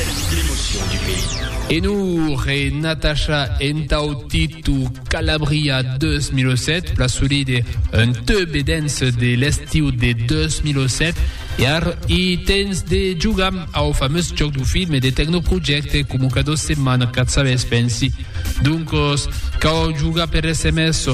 L'emotion du pays. En hor e Natasha entau Titu Calabria 2007, plasolide un teu bedens de l'estiu de 2007, e ar i tens de jogam au fameus jòc du film e de Tecnoprojecte coma cada setmana, quatz sabes, pensi. Doncos, cau jogar per sms,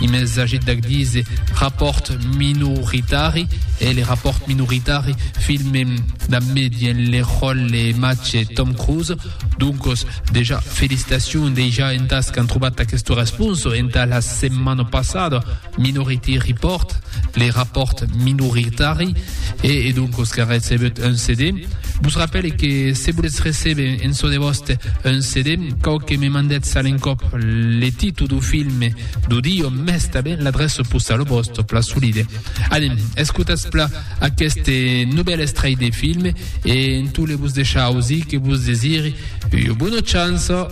I me sagit d'ac dise rapòrt minoritari, e le rapòrt minoritari filme damb me dient le ròlle matge Tom Cruise. Doncos, dejà, felicitacion dejà entàs qu'an trobat aquesta responsa entà la setmana passada, Minority Report. le rapòrt minoritari e e doncos qu'a recebut un CD. Vos rapèle que se volètz recebe en çò de vòste un CD, cau que me mandètz a l'encòp le titu du filme du di o mès tanben l'adrèça postala vòsta pla solide. Anem, escotatz pla aqueste novèl estrèit de filme e en tot le vos deishar ausir que vos desiri ua bona chança.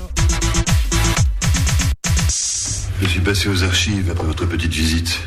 Je suis passé aux archives après votre petite visite.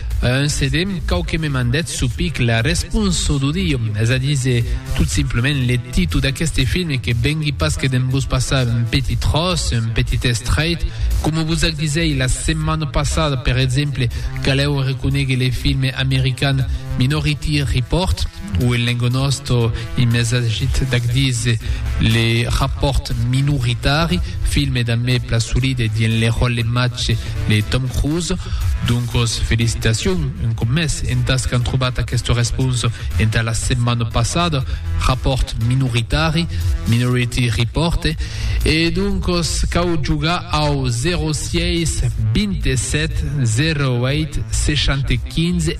Un sedem cau que me mandètz su pic la responso d'odio, es a díser, tot simplement le titu d'aqueste film que vengui pas que d'en vos passar un petit tròç, un petit estrait, coma vos ac disèi la setmana passada, per exemple, calèu reconéguer le film american Minority Report, Ò en lengo nòsto i mes agit d'ac dise le rapòrt minoritari, filme dambe Plasolide dient le ròlle mace de Tom Cruise. Doncos felicitacion un còp mès entàs qu'an trobat aquesta responsa entà la setmana passada, rapòrt minoritari, Minority Report. E doncos cau jogar au 06 27 08 60 15.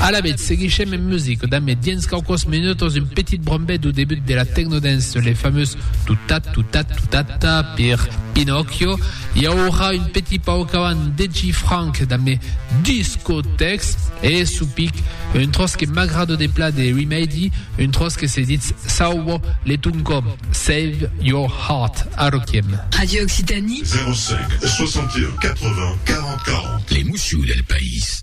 Alavetz, seguishem en music damb dens quauquòs minutos un petit brombet du debut de la Technodance, le fameux Tutat-tutat-tutata per Pinocchio. I aurà un petit pauc avant Deji Franck damb Discotex e Supic, un tròç que m'agrado de pla de Remedy, un tròç que se ditz Sauvo le ton còm, Save your heart. Arroquiem. Radio Occitanie. 05 61 80 40 40. Les moussions del país.